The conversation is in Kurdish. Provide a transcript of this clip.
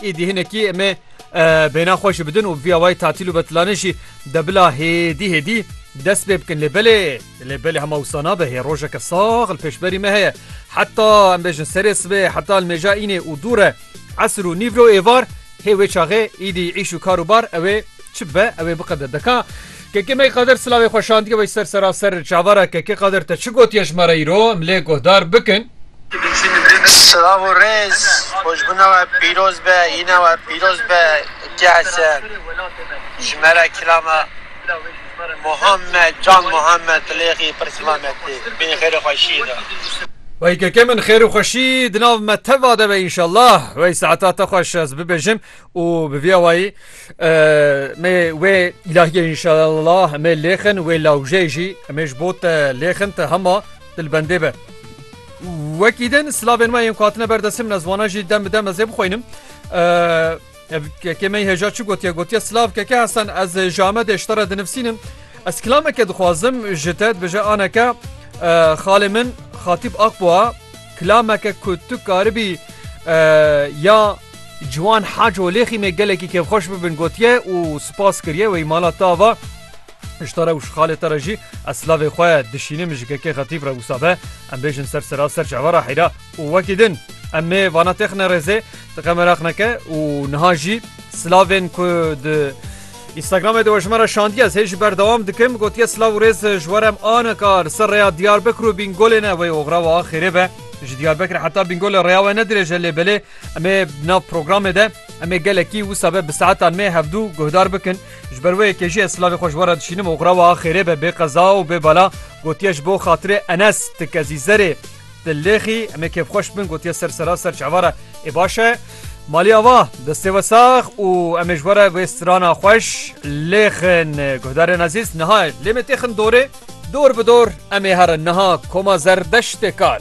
Êdî hinekî em ê bêhna xwe jî bidin û vîya wayî tatîl û betilanê jî de bila hêdî hêdî dest pê bikin lê belê lê belê hema wisa nabe hê rojeke sax li pêşberî me heye heta em bêjin serê sibê heta li mêja înê û dûre esir û nîvro êvar hê wê çaxê êdî îş û kar û bar ew ê Çi be ew ê biqede. Deka Kekê me Qadir silavê xwe şandiye wey ser seraser çavara Kekê Qadir te çi gotiye ji me re îro em lê guhdar bikin. Silav û rêz, xweşbûna we pîroz be, hîna we pîroz be Kekê Hesen. Ji me re kilama Muhammed Can Muhammed Tilêxî pir silav me tê. Bêyî xêr û xweşiyê de. Wey Kekê min xêr û xweşî di nav me teva de be înşallah. Wey saeta te xweş ez bibêjim û bi vî awayî me wê îlahiyê înşeellah me lêxin wê lawjê jî me ji bo te lêxin te hema dilbendê be. Wekî din silavên me yên ku hatine ber destê min ez wana jî dem bi dem ez ê bixwînim. Kekê me hêja çi gotiye gotiye silav keke hesan ez ji Amedê ji te re dinivsînim. Ez kilameke dixwazim ji te dibêje aneke xalê min Xatîb Akboa kilameke ku tu karibî ya Ciwan Haco Lêxî me gelekî kêfxweş bibin gotiye û spas kiriye wê mala te ava Ji te re û ji xalê te re jî ez silavê xwe dişînim ji KK Xetîb re wisa be em bêjin ser sera ser çava re heyra û wekî din em ê vana têxine rêzê ti qe meraq neke û niha jî silavên ku di Instagramê de we ji me re şandiye ez hê ji ber dewam dikim gotiye silav û rêz ji we re em ane ka li ser rêya Diyarbekir û Bîngolê ne wê oxra we a xêrê be ji Diyarbekirê heta Bîngolê rêya we ne dirêj e lê belê Em ê di nav programê de em ê gelekî wisa be bi saetan me hevdû guhdar bikin. Ji ber wê yekê jî ez silavê xwe ji we re dişînim û xurawa axêrê be bê qeza û bê bala gotiye ji bo xatirê Enes ti kezî zerê ti lêxî em ê kêfxweş bin gotiye ser sera ser çava re ê baş e Malî ava destê we sax û em ê ji we re wê strana xweş lêxin guhdarên ezîz niha lê me têxin dorê dor bi dor em ê herin niha koma zerdeştê kal.